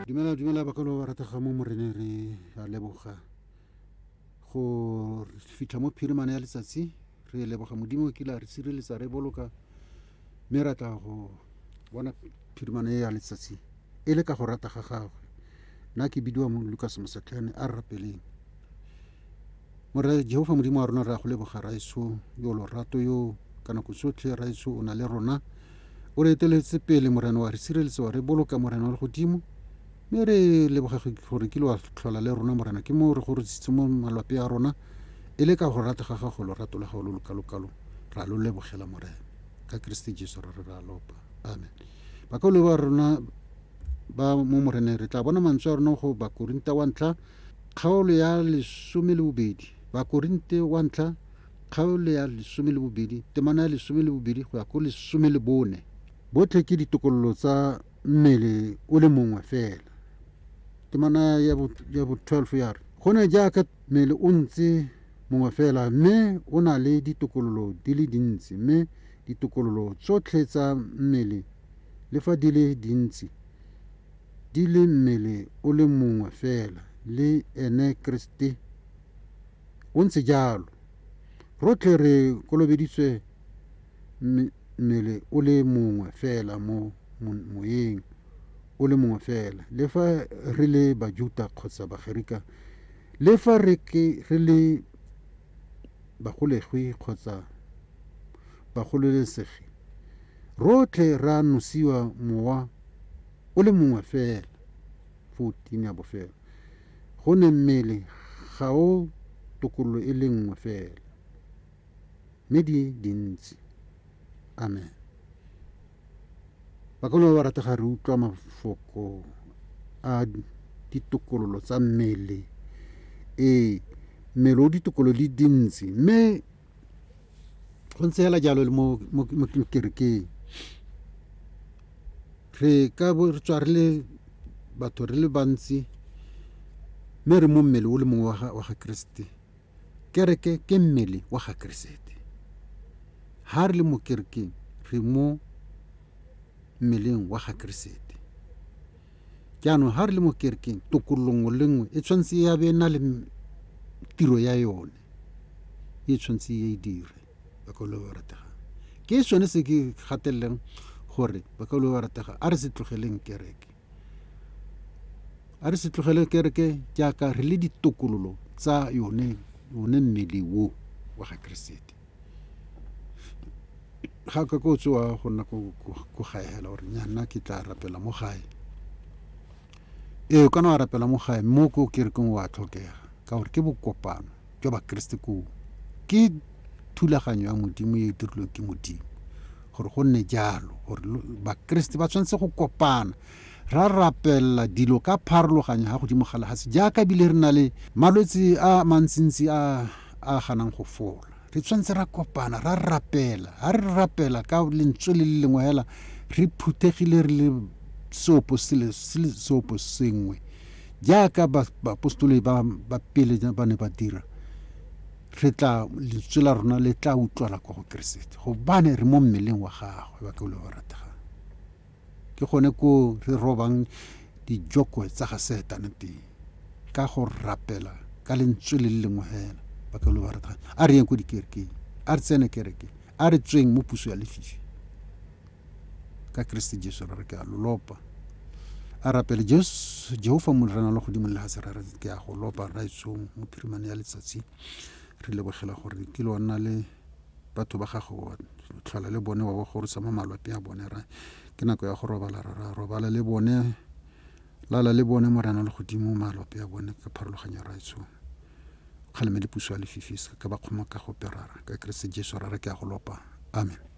dumela dumela bakalo ba ratega mo moreneng re a leboga go fitlha mo phirimane ya letsatsi re leboga modimo o kile a re sireletsa re boloka mme ra tla go bona phirimane ya letsatsi e le ka go rata ga gagwe nna ke bidiwa mo lucas mosetlhane a re rapeleng Morre Jehofa Modimo wa rona re a go leboga raetsho yo lorato yo ka nako tsotlhe raetsho o na le rona o re eteletse pele morena wa re sireletsa wa re boloka morena wa le godimo mme re leboga gore kile wa tlhola le rona morena ke moo re go retsitse mo malwape a rona e le ka go rata ga gago lorato la gago lo lokalokalo ra lo lebogela morena ka keresete jesu ra re ra lopa amen bakaolo ba rona ba mo moreneng re tla bona mantswe a rona go bakorinta wa ntlha Kgaolo ya lesome le bobedi, Bakorinte wa ntlha kgaolo ya lesome le bobedi, temana ya lesome le bobedi go ya ko lesome le bone. Botlhe ke ditokololo tsa mmele o le mongwe fela. Temana ya bo, ya bo 12 ya re, Go ne jaaka mmele o ntse mongwe fela, mme o na le ditokololo di le dintsi, mme ditokololo tsotlhe tsa mmele le fa di le dintsi, di le mmele o le mongwe fela le ene Keresete. Go ntse jalo. Rotlhe re kolobeditswe mmele o le mongwe fela mo moyeng o le mongwe fela, le fa re le Bajuta kgotsa Bagerika, le fa re ke re le bagolegwi kgotsa bagololesegi, Rotlhe re a nosiwa Mowa o le mongwe fela, 14 ya bofelo, go ne mmele ga o tokololo e le nngwe fela, mme di dintsi. Amen. Bakolo ba ba ratega re utlwa mafoko a ditokololo tsa mmele. Ee, mmele o ditokololo di dintsi, mme go ntse fela jalo le mo kerekeng re ka bo re tswa re le batho re le bantsi mme re mo mmele o le mongwe wa ga keresete kereke ke mmele wa ga keresete ha re le mo kerekeng re mo mmeleng wa ga keresete jaanong ha re le mo kerekeng tokololo nngwe le nngwe e tshwanetse ya be na le tiro ya yone e tshwanetse e dire bakaulwa ba ratega ke sone se ke gateleleng gore bakaulwa ba ratega a re se tlogeleng kereke a re se tlogele kereke jaaka re le ditokololo tsa yone yone mmele wo wa ga keresete ga ka ko tsoa go nna go gaegela gore nyanna ke tla rapela mo gae Ee, o ka no a rapela mo gae, mme o ko kerekeng o a tlhokega, ka gore ke bokopano jwa bakeresete koo. Ke thulaganyo ya Modimo e e dirilweng ke Modimo gore go nne jalo gore bakeresete ba tshwanetse go kopana ra rapelela dilo ka pharologanyo ga godimo ga lehase jaaka ebile re na le malwetse a mantsintsi a a ganang go fola re tshwanetse ra kopana ra rapela ga re rapela ka lentswe le le lengwe fela re phuthegile re le seopo sele se le seopo sengwe jaaka ba- baapostoloi ba ba pele ja- ba ne ba dira re tla lentswe la rona le tla utlwala kwa go keresete gobane re mo mmeleng wa gagwe ba ke le ba rategang Ke gone koo re robang dijokwe tsa ga Setane teng, ka go rapela ka lentswe le le lengwe fela. Ba ka lo ba re tla, a re yeng ko dikerekeng, a re tsene kereke, a re tsweng mo puso ya lefifi. Ka Keresete Jesu ra re ke a lo lopa. A rapele Jesu, Jehofa Morena lo godimo le lefatshe, ra re ke a go lopa Rraetsong, Mophirimane ya letsatsi. Re lebogela gore ke lo nna le batho ba gago wa tlhola le bone wa ba gorosa mo malwape a bone ra ke nako ya go robala ra ra robala le bone lala le bone morena le godimo malwape a bone ka pharologanyo ra etsho kgalemele puso ya lefifi se ka ba kgoma ka go perara ka keresete jesu ra re ke a go lopa amen